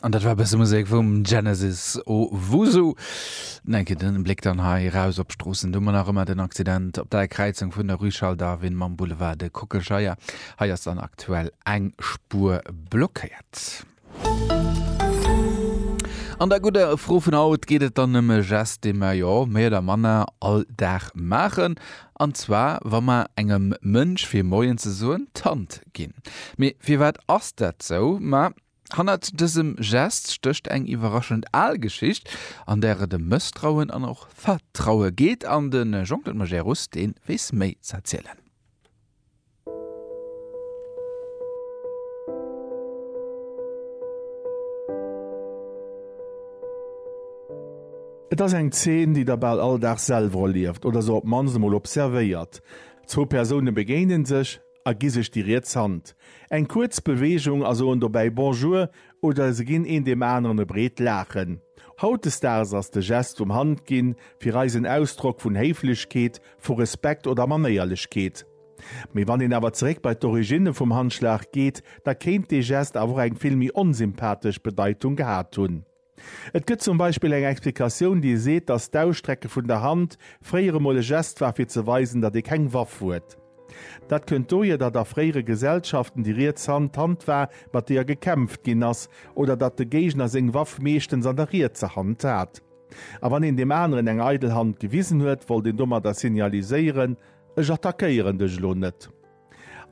An dat war e bësse Musek vum Genesis Owusu. An eng Kéier den Bléck dann hei eraus op d'Stroossen. Do mar nach ëmmer den Accident op der Kräizung vun der Rue Charles Darwin mam Boulevard de Kockelscheier. Hei ass dann aktuell eng Spuer blockéiert. An der gudder Fro vun haut geet et dann ëm e Gest, dee mer jo méi oder manner all Dag maachen. An zwar wa mer engem Mënsch fir Moien ze soen d'Hand ginn. Mee firwat ass dat sou? Ma hannert dësem Gest stécht eng iwwerraschend al Geschicht, an där et ëm Mësstrauen an och Vertraue geet. An de Jean-Claude Majerus, dee weess méi z'erzielen. Et ass eng Zeen, déi der bal all Dag selwer erlieft oder se op d'mannst emol observéiert. Zwou Persoune begéine sech a gi sech déi riets Hand. Eng kuerz Beweegung a soen dobäi Bonjour oder se ginn een deem aneren e breet Laachen. Hautdesdaags ass de Gest vum Handginn fir eis en Ausdrock vun Héiflechkeet, vu Respekt oder Manéierlechkeet. Mee wann een awer zeréck bei d'Origine vum Handschlag geet, da kéint dee Gest awer och eng vill méi onsympathesch Bedeitung gehat hunn. Et gëtt zum Beispill eng Explikatioun, déi seet, datt d'Ausstrecke vun der Hand fréier emol e Gest war, fir ze weisen, datt ee keng Waff huet. Dat kënnt dohier, datt a fréiere Gesellschaften déi riets Hand d'Hand war, mat deeër gekämpft ginn ass, oder datt de Géigner seng Waff meeschtens an der rietser Hand hat. A wann een deem aneren eng eidel Hand gewisen huet, wollt een domadder signaliséieren, Ech attackéieren dech elo net.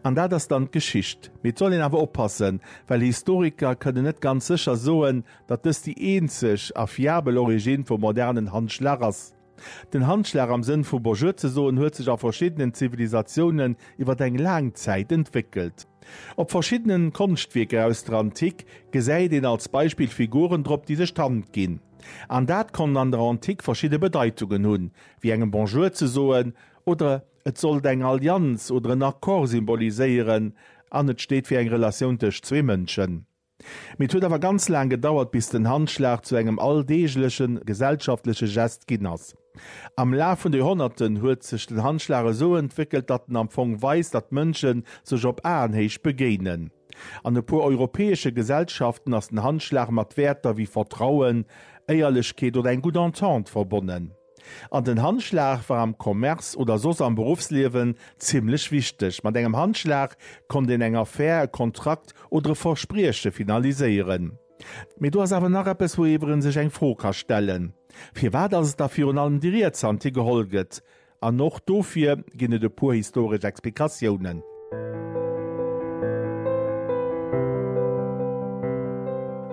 An dat ass dann d'Geschicht. Mee et soll een awer oppassen, well Historiker kënnen net ganz sécher soen, datt dëst déi eenzeg a fiabel Origine vum modernen Handschlag ass. Den Handschlag am Sënn vu Bonjour ze soen huet sech a verschiddenen Zivilisatiounen iwwer eng laang Zäit entwéckelt. Op verschiddenen Konschtwierker aus der Antik gesäit een als Beispill Figuren drop, déi sech d'Hand ginn. An dat konnt an der Antik verschidde Bedeitungen hunn, wéi engem Bonjour ze soen, oder et sollt eng Allianz oder en Accord symboliséieren an et steet fir eng Relatioun tëscht zwee Mënschen. Mee et huet awer ganz laang gedauert, bis den Handschlag zu engem alldeegleche gesellschaftleche Gest ginn ass. Am Laf vun Joerhonnerten huet sech den Handschlag esou entwéckelt, datt en am Fong weist, datt Mënsche sech op Aenhéicht begéinen. An e puer europäesche Gesellschaften ass den Handschlag mat Wäerter wéi Vertrauen, Éierlechkeet oder eng gutt Entente verbonnen. An den Handschlag war am Commerce oder soss am Beruffsliewen zimmlech wichteg. Mat engem Handschlag konnt een eng Affär, e Kontrakt oder e Versprieche finaliséieren. Mee do ass awer nach eppes, wouiwwer ee sech eng Fro ka stellen, Firwat ass et da virun allem déi riets Hand, déi geholl gëtt? An och dofir ginn et e puer historesch Explikatiounen.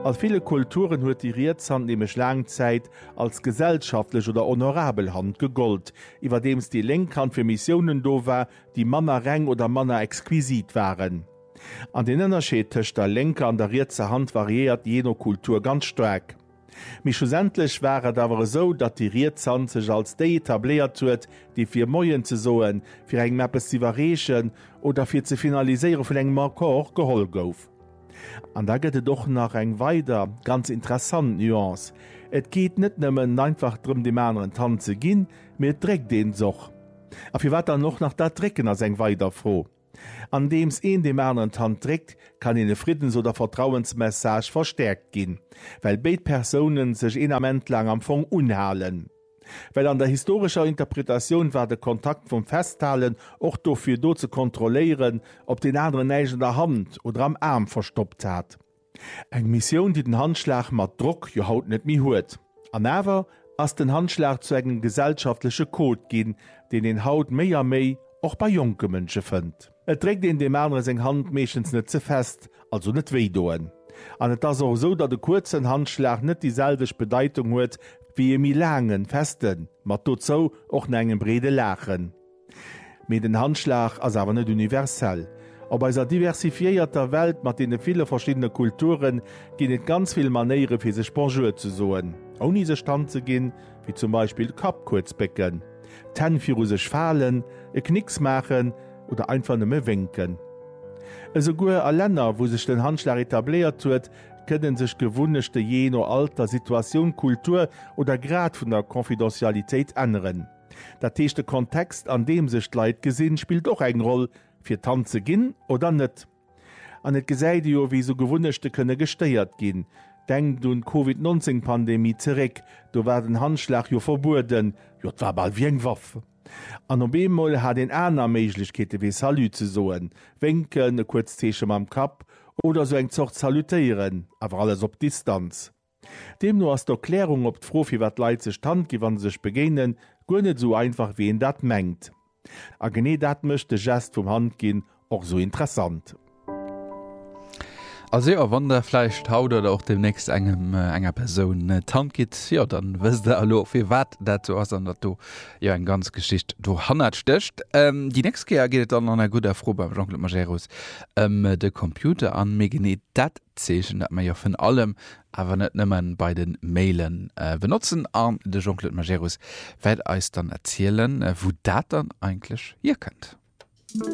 A ville Kulturen huet déi riets Hand nämlech laang Zäit als gesellschaftlech oder honorabel Hand gegollt, iwwerdeems déi lénk Hand fir Missiounen do war, déi manner reng oder manner exquisit waren. An den Ënnerscheed tëscht der lénker an der rietser Hand variéiert jee no Kultur ganz staark. Mee schlussendlech war et awer esou, datt déi riets Hand sech als déi etabléiert huet, déi fir Moien ze soen, fir engem eppes z'iwwerreechen oder fir ze finaliséiere vun engem Accord geholl gouf. An da gëtt et och nach eng weider ganz interessant Nuance, Et geet net nëmmen einfach drëm deem aneren d'Hand ze ginn, mee et dréckt een s'och. A firwat dann och nach dat Drécken ass eng weider Fro. Andeems een deem aneren d'Hand dréckt, kann een e Friddens oder Vertrauensmessage verstäerkt ginn, well béid Persoune sech een Ament laang am Fong unhalen. Well an der historescher Interpretatioun war de Kontakt vum Festhalen och dofir do ze kontrolléieren, ob deen aneren näischt an der Hand oder am Aarm verstoppt hat. Eng Missioun, déi den Handschlag mat Drock jo haut net méi huet. An awer ass den Handschlag zu engem gesellschaftleche Code ginn, deen een haut méi a méi och bei jonke Mënsche fënnt. Et dréckt een deem anere seng Hand meeschtens net ze fest, also net wéidoen. An et ass och esou, datt e kuerzen Handschlag net déi selwecht Bedeitung huet wéi e méi laangen, festen, mat dozou och na engem breede Laachen. Mee den Handschlag ass awer net universell. Op eiser diversifiéierter Welt mat deene ville verschiddene Kulture ginn et ganz vill Manéiere fir sech Bonjour ze soen, ouni sech d'Hand ze ginn, wéi zum Beispill Kapp kuerz bécken, d'Hänn viru sech falen, e Knicks maachen oder einfach nëmme wénken. Esouguer a Länner, wou sech den Handschlag etabléiert huet, kënne sech d'Gewunnechte jee no Alter, Situatioun, Kultur oder Grad vun der Confidentialitéit änneren. Dat heescht de Kontext an deem sech d'Leit gesinn spillt och eng Roll fir Tante ze ginn oder net. An et gesäit ee jo wéi sou Gewunnechte kënne gestéiert ginn. Denkt un d'Covid 19 Pandemie zeréck, do war den Handschlag jo verbueden, jo et war bal wéi eng Waff. An op eemol hat een aner Méiglechkeete wéi Salut ze soen, Wénken, e kuerzt Zeeche mam Kapp oder sou eng Zort Salutéieren, awer alles op Distanz. Deemno ass d'Erklärung op d'Fro firwat d'Leit sech d'Hand ginn wann se sech begéinen, guer net esou einfach wéi een dat mengt. A genee dat mécht de Gest vum Handginn och esou interessant. Also jo, wann der vläicht haut oder och deemnächst engem, enger Persoun d'Hand gitt, jo dann wësst der elo firwat dat esou ass an datt do jo eng ganz Geschicht dohannert stécht. Déi nächst Kéier geet et dann an der gudder Fro beim Jean-Claude Majerus ëm de Computer an méi genee dat Zeechen, dat mer jo vun allem, awer net nëmmen, bei de Mailen benotzen an de Jean-Claude Majerus wäert eis dann erzielen, wou dat dann eigentlech hierkënnt.